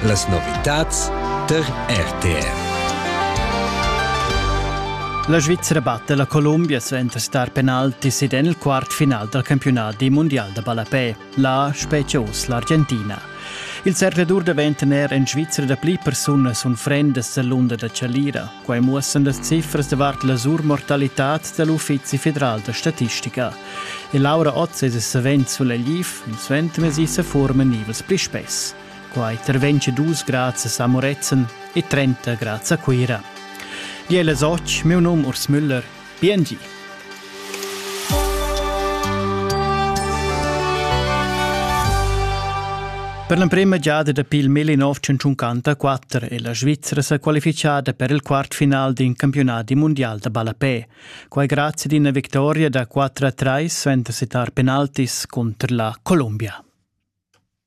Las novitads tar RTR. La Svizzera batte la Colombia suenter star penaltis ed en il quart final dal campionat mondial da ballapè, la Specios, l'Argentina. Il zercladur daventa er en Svizzera dapli persunas unfrendas l'unda da Chalira. Quai muossan las cifras davart la surmortalitad da l'Uffizi federal da statistica. E Laura Otz es savens sulla LIF, il suentermezdi se forman nivels pli spess. Quai intervenga dus grazie a Moretzen e 30 grazie a Cuira. Di è las och, meu num Urs Müller, Biengi. Per l'emprema giada dapi il 1954 è la Svizzera sa qualifichada per il quartfinal d'in campiunat mundial da ballapè. Quai grazie ad una vittoria da 4-3 suenter settar penaltis contro la Colombia.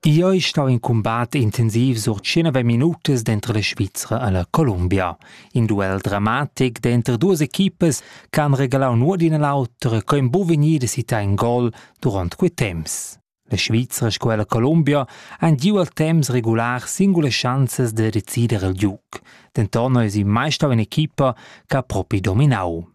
Io ei stau in cumbat intensiv sur tschennove minutas denter la Svizra e la Columbia. In duel dramatic denter duas equipas che han regalau nuot d'ina l'autra co ein buca vegnidas sitai in gol duront quei temps. La Svizra sco e la Columbia han giu al temps regular singulas schanzas da decider il giug. Denton eis ei mai stau in'equipa che ha propi dominau.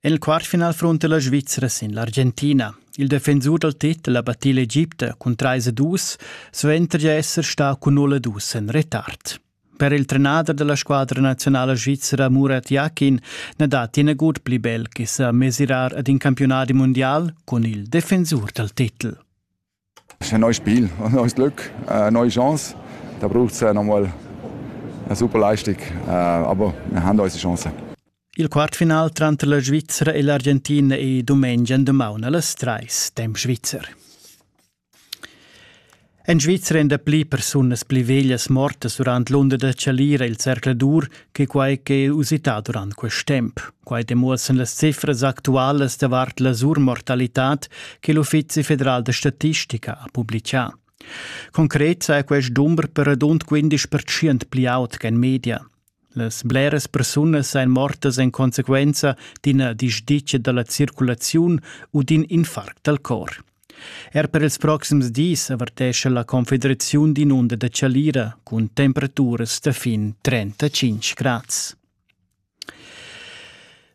En il quartfinal frunta la Svizra sin l'Argentina. Il defensur dal titel ha battì l'Egipte cun trais e dus, suenter di esser stà cun null e dus en retard. Per il trenader della squadra nazionale svizra Murat Yakin na datti nagut pli bel che sa mesirar ad in campionat mondial con il defensur dal titel. Ein neues Spiel, ein neues Glück, eine neue Chance. Da braucht es nochmal eine super Leistung. Aber wir haben unsere Chance. Il quartfinal tranter la Svizzera e l'Argentina è domenica domaun alle 3 dem Schweizer. En Svizzera èn dapli persunas pli veglias mortas durant l'unda da Chalira il Cercle d'Ur che quai ch'è usità durant quest temp. Quai demuossan las cifras actualas davart la surmortalitad che l'Uffizi federal da statistica ha publicà. Concret saja quest dumber per radund 15% pli aut che en media. Las bleras persunas ein mortas en consequenza d'ina disdicia dalla circulaziun u d'in infarct dal cor. Er per ils proxims dis avertescha la Confederaziun d'inunda da chalira cun temperaturas da fin 35 grads.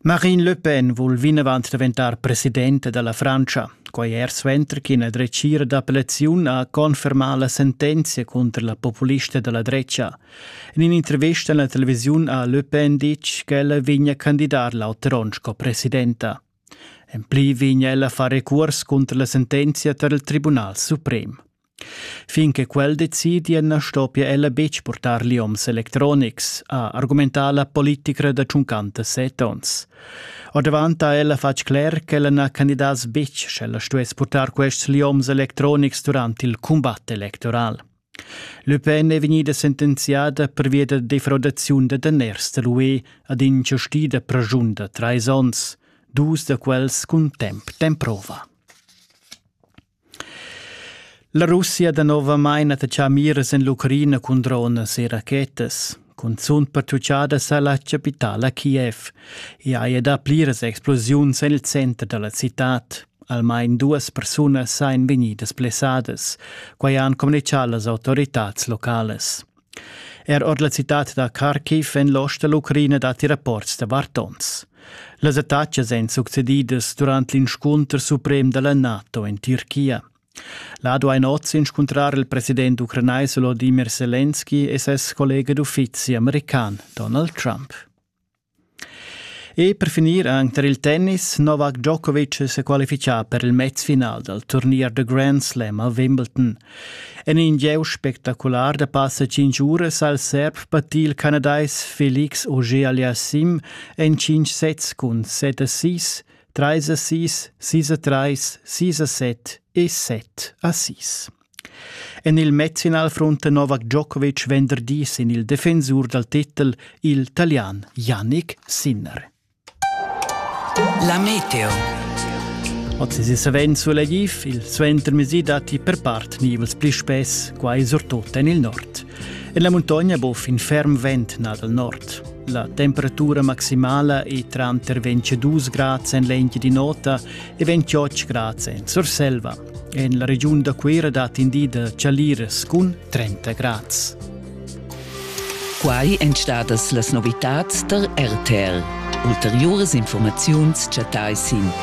Marine Le Pen vul vinavant daventar presidenta dalla Francia. Quai er suenter ch'ina dretgira d'appellaziun ha confermà la sentenzia contro la populista dalla drecha. In un'intervista alla televisione ha Le Pen ditg ch'ella vegna candidar l'auter sco presidenta. En pli vegn ella far recuors cunter la sentenzia tar il Tribunal suprem. Fin che quel decidia na stoppia ella betg purtar lioms electronics, ha argumentà la politicra da tschuncanta set onns. Ordavant ha ella fatg cler ch'ella na candidass betg sch'ella stuess purtar quests lioms electronics durant il cumbat electoral. Le Pen è vegnida sentenziada pervia da defraudaziun da daners da l'UE ad inchastida praschun da trais onns, dus da quels cun temp d'emprova. La Russia danovamain attachà miras en l'Ucraina cun dronas e rachetas. Cunzunt pertutgada sa la chapitala Kiev. I haja dà pliras explosiuns en il center da la citad. Almain duas persunas èn vegnidas blessadas. Quai han communitgà las autoritads localas. Er ord la citad da Kharkiv en l'ost da l'Ucraina datti rapports da vartons. Las attacas èn succedidas durant l'inscunter suprem da la NATO en Tirchia. Là duain oz inscuntrar il president ucranais Volodimir Selenski e ses collega d'uffizi american Donald Trump. E per finir anche per il tennis, Novak Djokovic si qualifica per il mezfinal dal turnier da Grand Slam a Wimbledon. En in gieu spectacular da passa 5 uras al serb pattì il canadais Felix Auger-Aliassim en 5 sets cun 7 a 6 Treis a sis, sis a treis, sis a set e set a sis. En il matchfinal frunta Novak Djokovic venderdi sin il defensur dal titel il Talian Yannick Sinner. La meteo. Oz si savens sulla Gif, il suentermesi datti per part nivels pli spess, quai surtut en il nord. En la muntogna bo fin ferm vent nà dal nord. La temperatura maximala è tranter 22 grads en l'engi di nota e 28 grads en Surselva. En la regiun da Cuira dat in di da chaliras cun 30 grads. Quai èn stadas las novitads tar RTL. Ulteriuras informaziuns chattai sin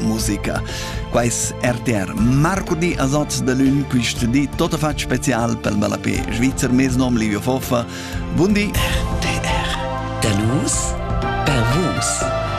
musica. Quais RTR marcudi a Sot de Lün quist di tot a fatg special pel ballapé Schweizer mesnom Livio Foffa. Bundi! RTR. Danus per vus.